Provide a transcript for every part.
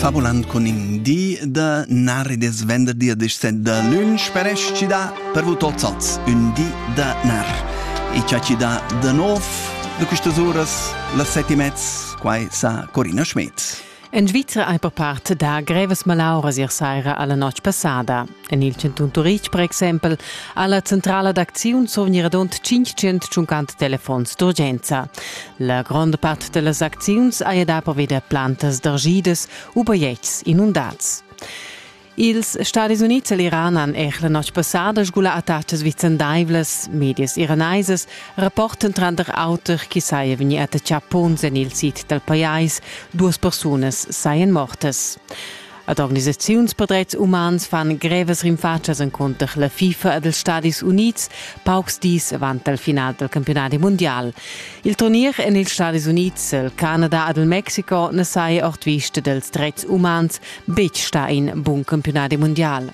fabuland con in di da nari des venderdi a descent da lunch per esci da per vu tots als un di da nar e ciaci da da nov de questas uras las sette e mezz quai sa Corina Schmidt En Svizra ei per part da grevas malauras ier saira alla notg passada. En il chantun Turitg per exempel ha la centrala d'acziun survgnir adont 500 tschuncant telefons d'urgenza. La gronda part da las acziuns haja da proveder plantas d'argidas u bajetgs inundads. Ils Stadis Unids e l'Iran han er la notg passada sgula attachas vicendaivlas. Medias iranaisas rapportan tranter auter chi saja vegni attaccà ponns en il sid dal pajais. Duas persunas sajan mortas. Ad organisaziuns per dretgs umans fan grevas rinfatschas encunter la FIFA ed els Stadis Unids paucs dis avant il final del campionati mundial. Il turnier en ils Stadis Unids, il Canada ed il Mexico na saja ord vista dels dretgs umans betg stà in bun campionati mundial.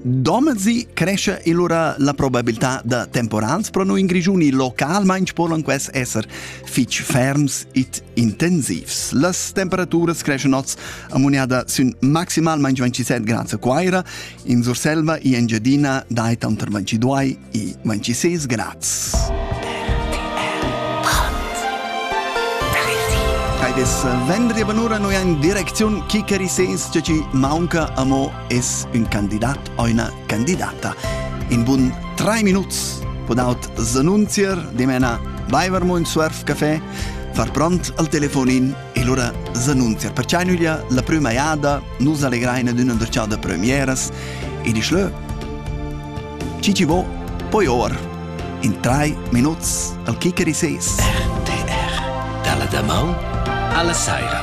Domezi cresce allora la probabilità da temporals pro noi in Grigiuni localmaing polan ques esser fich ferms et intensivs. Las temperaturas creschen oz ammuniada sün maximalmaing 27 grad a Quaira, in Surselva e Engiadina dai tanter 22 e 26 grads. Vis vendri banura noi in direcziun Chicheri sens ce ci maunca amo es ün candidat o üna candidata. In bun tre minuts podaut s'annunzier dimena baivermo in Surf Café, far pront al telefonin e lura s'annunzier. Perciai nüglia la prüma jada nus allegraina d'üna derciada premieras e disch lö, chi ci vo, poi or. In tre minuts al kicker i ses. RTR, dalla damaun alla saira.